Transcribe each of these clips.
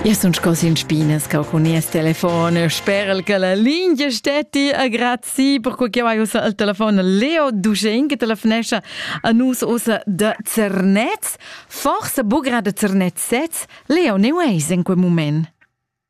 Io sun sco sin spinas ca cun nies telefon. Sperel che la lingia stetti a grazi per quei che vai ussa al telefon Leo Dugen che telefonescha a nus ussa de Zernez. Forse bugra de Zernez sez, Leo ne veis in quel moment.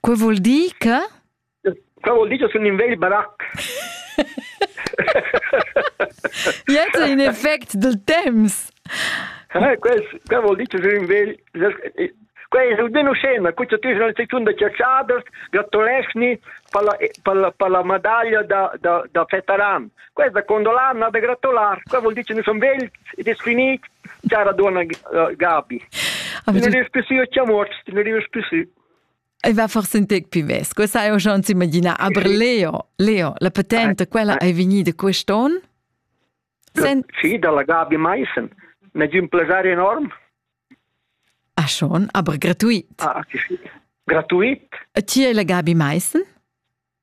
Quei vul dir che? Quei vul dir che sun in vegl barac. Jetzt in effect del temps. Eh, questo, questo vuol dire che sei un vegl... Quella è almeno scena, questa tu sei una da ciaciaders, gratulesni per la, per la, per la medaglia da, da, da Fetaran. Quei da condolar na da gratular, quei vuol dir che nus son vegls ed es finit, cara donna Gabi. Ne rius più su ci muort, ne rius più su. E va forse un tec più ves. Questa è schon si immagina aber Leo, Leo, la patente, quella è venida quest'on? Sen... Sì, dalla Gabi Meissen. Ne di un piacere enorme. Ah schon, aber gratuit. Ah, sì, sì. Gratuit. E chi è la Gabi Meissen?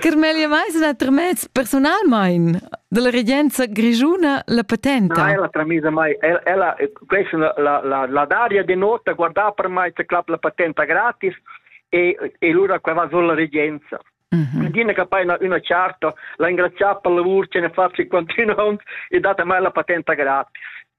Carmelia Meisner ha tramess personalmain dalla regenza grischuna la patenta. Nein, la tramisa mai. Ella, questa la, la, la daria de nota, guarda per mai, te clap la patenta gratis e, e lura qua va sulla regenza. Mm -hmm. Gina che poi una, una charta, la ringraziamo per il lavoro che ne fa continuando e date mai la patenta gratis.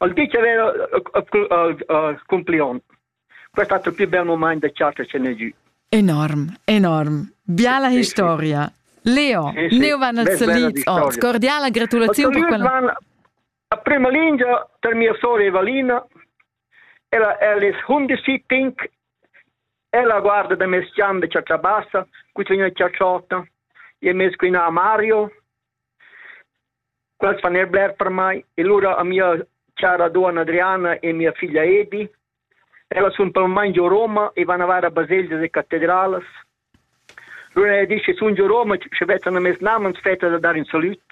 Il teacher è cumplion. Questo ha il più bel moment da chat ce n'è giù. Enorm, enorm. Biala historia. Leo, sì, sì. Leo van als Lied. Oh, scordiala gratulazione per quella. A prima linea per mia sorella Evalina. Ella, ella è 11, ella guarda da me sciambe ciaccia bassa, qui c'è una ciacciota, e me qui a Mario, Quels fan er bler per mai e lura a mia chara duonna Adriana e mia figlia Edi. Ellas sun permai giò Roma e van a var a baselgias e catedralas. Lura e disch, sun giò Roma, sche vezzan a mes namens fetta da dar in salüt.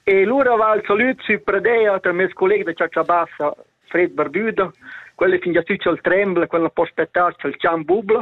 e lura va il salüt sü Pradea tra meis colleg da Ciaccia Bassa, Fred Barbuda. Quella fingia tü cha'l trembla, quella posta tard cha'l chan bubla.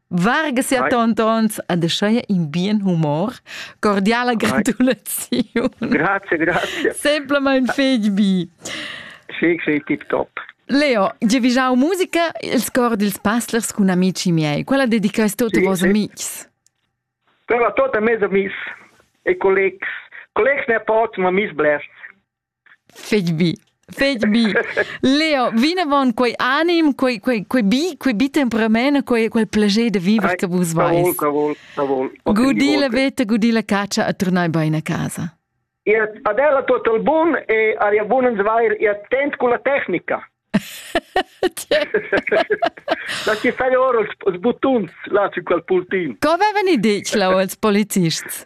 Varga sia tontons a deschaia in bien humor, cordiala gratulaziun. Grazie, grazie. Semplament feg bi. Sì, sì, tip top. Leo, giavigiau musica il score dils passlers cun amici miei. Quella dedicais tot sì, vos sì. amics. Quella tota mes amics e collegs. Collegs ne pots, ma mis blest. Fetg bi, fetg bi. Leo, vinavon quei anim, quei, quei, quei bi, quei bi temperament, quei, quel plager de viver che vus veis. Cavol, cavol. Gudi la veta, gudi la caccia a tornai bein a casa. Ihr adela total bun e aria bun uns vair ihr tent con la tecnica. La ci fai ora els buttons là su quel pultin. Co vevan i ditg là els polizists?